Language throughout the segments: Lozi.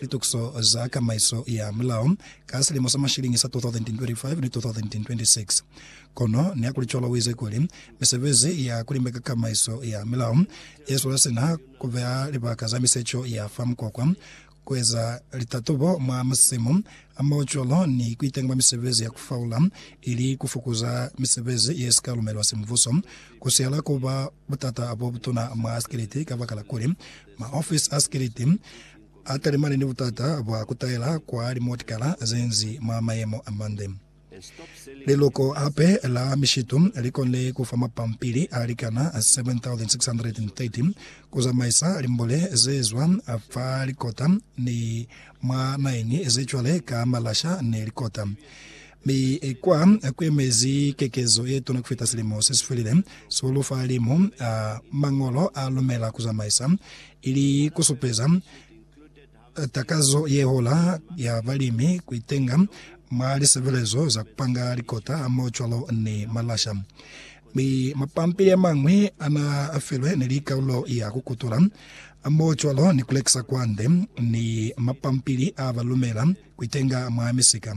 Litukiso za Kamaiso ya Mulao ka silimo sa mashilingi sa 2025 ni 2026. Kono nihakulicwalo uize kuli, misebezi ya kulimbeka kamaiso ya mulao yezwela sina kubeha libaka za misecho ya fa mukwakwa, kueza litatobo mwa masimu, hamaho cwalo ni kuitenga mwa misebezi ya kufaula ili kufukuza misebezi yesika lumelwa simubuso, kusihala kuba Butata bo butuna mwa sikiliti kabakala kuli maofisi a sikiliti a talimane ni butata bwa ku taela kwa limotikala ze nzi mwa mayemo a mande. Liloko hape la mishitu li konile ku fa mapampili a likana 7,630 ku zamaisa limbole ze zwa fa likota ni mwa naeni ze cwale ka malasha ni likota. Mi kwa kuemezi kekezo yetuna kufita silimo sesifelile, sihulu fa limu a Mañolo a lumela kuzamaisa, ili kusupeza takazo yehola ya balimi kuitenga mwa lisebelezo za kupanga likota hamoho cwalo ni malasha. Mi mapampili amañwi ana afilwe ni likaulo ya kukutula, hamoho cwalo ni kulekisa kwande, ni mapampili a balumela kuitenga mwa misika.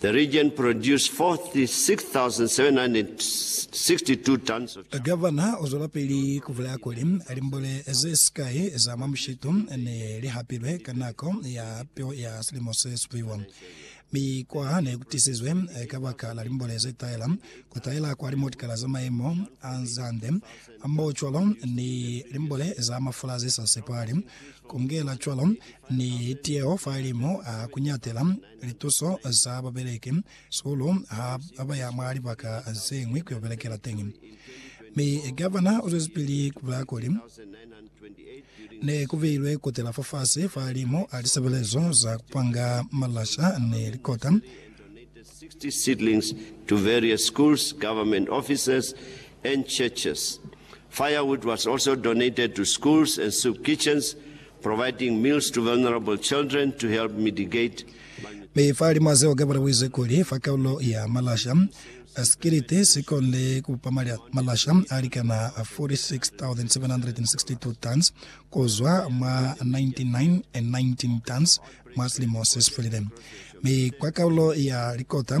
The region produced 46,762 tons of charcoal. Gavana u zwelapili ku bulaya kuli, Limbole ze sikai za mwa mushitu ne li hapilwe ka nako ya peo ya silimo se supiwa, mi kwa ne ku tisizwe kabaka la limbole ze taela, ku taela kwa limotikala za mayemo a zande, hamohocwalo ni limbole za mafula ze sa sepahali, ku ngela cwalo ni tiyeho fa limu a ku nyatela. Lituso za babeleki, Sulu ha ba ya mwa libaka ze ñwi ku yo belekela teñi. Mi Gavana u zwezipili ku bulaya kuli, Ne ku beilwe kotela fafasi fa limo a lisebelezo za ku panga malasha ni likota, Providing meals to vulnerable children to help mitigate. Mi fa lima zeo ke butabuize kuli fa kaulo ya malasha a sikiliti si konde ku bupa malasha a likana 46,762 tons ku zwa mwa 99,19 tons mwa silimo se si felile, mi kwa kaulo ya likota